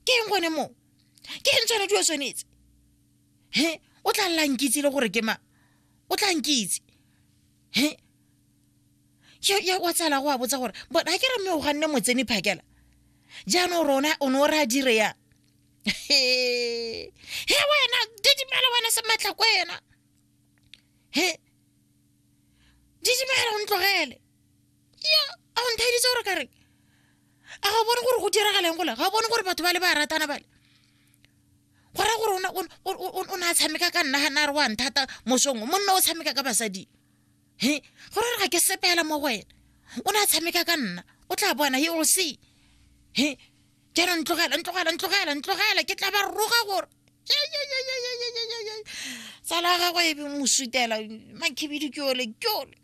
ke eng gone moo ke eng tshwanedi o tshwanetse he o tla lela nkitse le gore ke ma o tla nkitse he ya wa tsala go a botsa gore but a ke re mme o ganne motsene phakela jaanong rona o ne o re a dire ya he wena didimela wena se matlha ko ena he didimela o ntlogele ya a o nthaditse gore kare a ga bone gore go diragalang gole ga bone gore batho ba le ba ratana bale go raya gore o ne a tshameka ka nna ga na re wa nthata mosong monna o tshameka ka basadi he go raya ga ke sepela mo go wena o ne a tshameka ka nna o tla bona he o se he jaanong ntlogela ntlogela ntlogela ntlogela ke tla ba roga gore tsala gagwe e be mosutela mankhibidu ke ole ke ole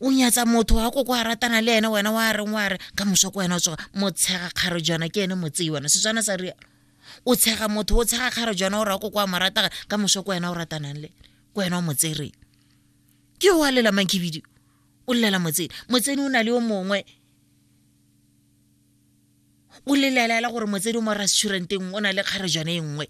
o nyatsa motho wa ko kwa ratana le ene wena wa reng wa re ka moso ko wena o tsoga motshega kgare jona ke ene motsei wena setswana sa rialo o tshega motho o tshega kgare jona o raya ko kwa mo rata ka moso ko wena o ratanang le ko wena o motsereng ke o a lela mankhibidio o lelela motseni motseni o na le yo mongwe o lelelela gore motsedi o mo restauranteng o na le kgare jone e nngwe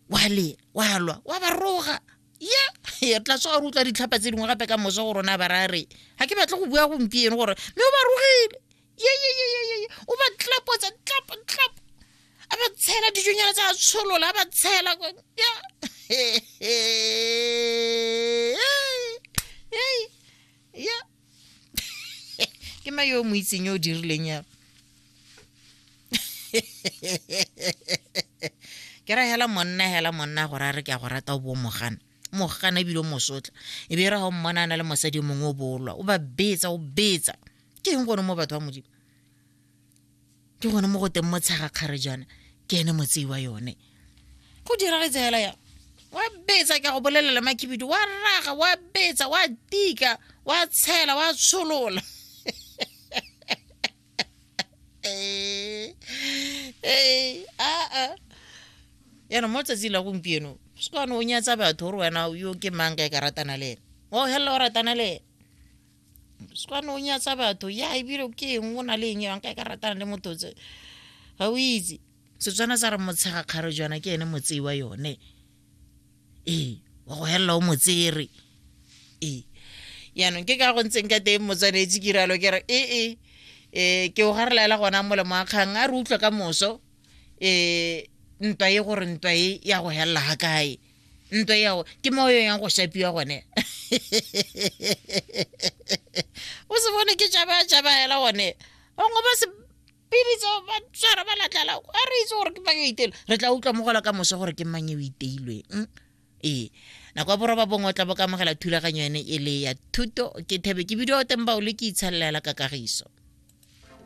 wa le wa lwa wa ba roga ya ya tla tsoga re utlwa ditlhapa tse dingwe gape ka moso go rona ba ra re ga ke batle go bua gompieno gore mme o ba rogile yeyeyeyeye o ba tlapotsa tlapo tlapo a ba tshela dijonyana tsa tsholola a ba tshela ya ya ke ma yo o mo itseng yo o dirileng yalo ke ra hela monna hela monna gore a re ke a go rata o bo mogana mogana ebile o mosotla e be e re ga o mmona a na le mosadi mongwe o bolwa o ba betsa o betsa ke eng gone mo batho ba modimo ke gone mo go teng mo tshegakgare jaana ke ene motsei wa yone go diragetse fela ya wa betsa ke go bolelela le makhibidu wa raga wa betsa wa tika wa tshela wa tsholola ee ee aa yana mo tsatsi la gompieno se ka one o nyatsa batho gore wena yo ke mang ka e ka ratana le ene o helela o ratana le ene sekwane o nyatsa batho ya ebile ke eng o na le eng yang ka e ka ratana le mototse ga o itse setswana sa re motshega kgare jwana ke ene motsei wa yone ee wa go helela o motsere ee yaanong ke ka go ntseng ka teng motswanetsi ke ralo ke re ee e, e, ke o ga re laela gona molemo wa kgang a re utlwa ka moso um ntwa e gore ntwa e ya go helela ga kae nto yago ke mo yo yang go šapiwa gone o se bone ke tšaba tšaba hela gone bangwe ba se pibitso ba tshwara ba latlala a re itse gore ke mang yo iteilwe re tla utlwa mogola ka moso gore ke mang yo iteilwe mm? ee nako ya boroba bongwe o tla bo ka amogela thulaganyo ene e le ya thuto ke thebe ke bidio teng bao le ke itshalelela ka kagiso